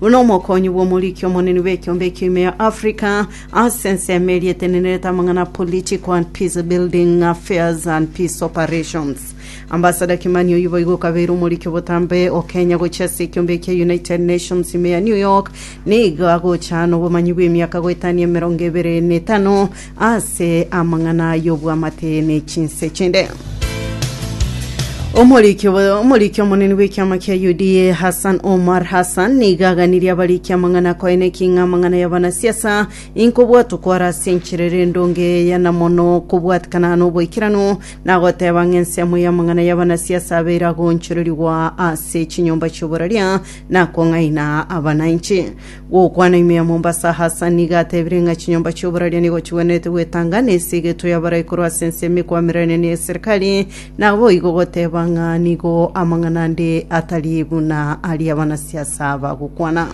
Buna omokonyi bw'omoriki omonene bw'ekiombe ekio ime ya Africa ase ensemo eria etenenerete amang'ana a political and peace building affairs and peace operations Ambassador Kimani oyio boigo okabeire omoriki obotambe o Kenya gochia ase ekiombe ekia United Nations ime ya New York nigo agocha nobomanyi bw'emiaka goetania emerongo ebere na etano Ase amang'ana y'obwamate ne chinse chinde. Omoriki obo- omoriki omonene bw'ekiama kia UDA Hassan Omar Hassan nigo aganirie abariki amang'ana akoeneki ng'a amang'ana y'abanasiasa inkobwatwa kware ase enchera ere endonge eya na mono kobwatikana n'oboikeranu na agoteba ng'a ensemo y'amang'ana y'abanasiasa abeire agoonchorerigwa ase chinyomba chi'oboraria na kong'aina abananchi Gokwana ime ya Mombasa Hassan nigo atebire ng'a chinyomba chi'oboraria nigo chigwenerete gwetanga na esigeto y'abarai korwa ase ensemo ekwamererania ne eserikari, naboigo goteba ng'a nigo amang'ana ande atari buna aria abanasiasa bagokwana.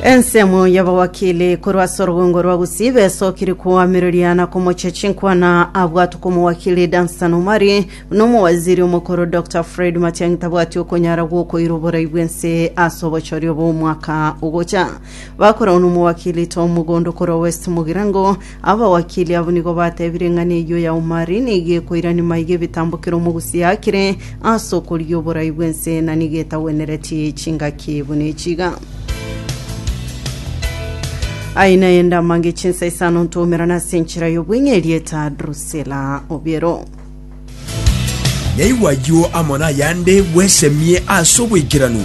Ensemo y'abawakili korwa ase orogongo rwa Gusii besokire koamereria na komochia chinkwana abwatwe komowakili Dunstan Omari Nomowaziri omokoro Doctor Fred Matiang'i tabwati okonyara gwokoira oborai bw'ense ase obochorio bw'omwaka ogocha. Bakoragwa nomowakili Tom Mugondo okorwa West Mugirango. Abawakili abwo nigo batebire eng'ana eyio ya Omari nigo ekoirani maiga ebitambo kera omogusi aakire ase okorigia oborai bw'ense na nigo etagwenereti chingaki buna echi iga. Aye naye ndamange chinsa isano ntomerana ase enchera y'obweng'eria eta Drusilla Obiero. Naigwa ayio amo nayande bwesemie ase oboikeranu.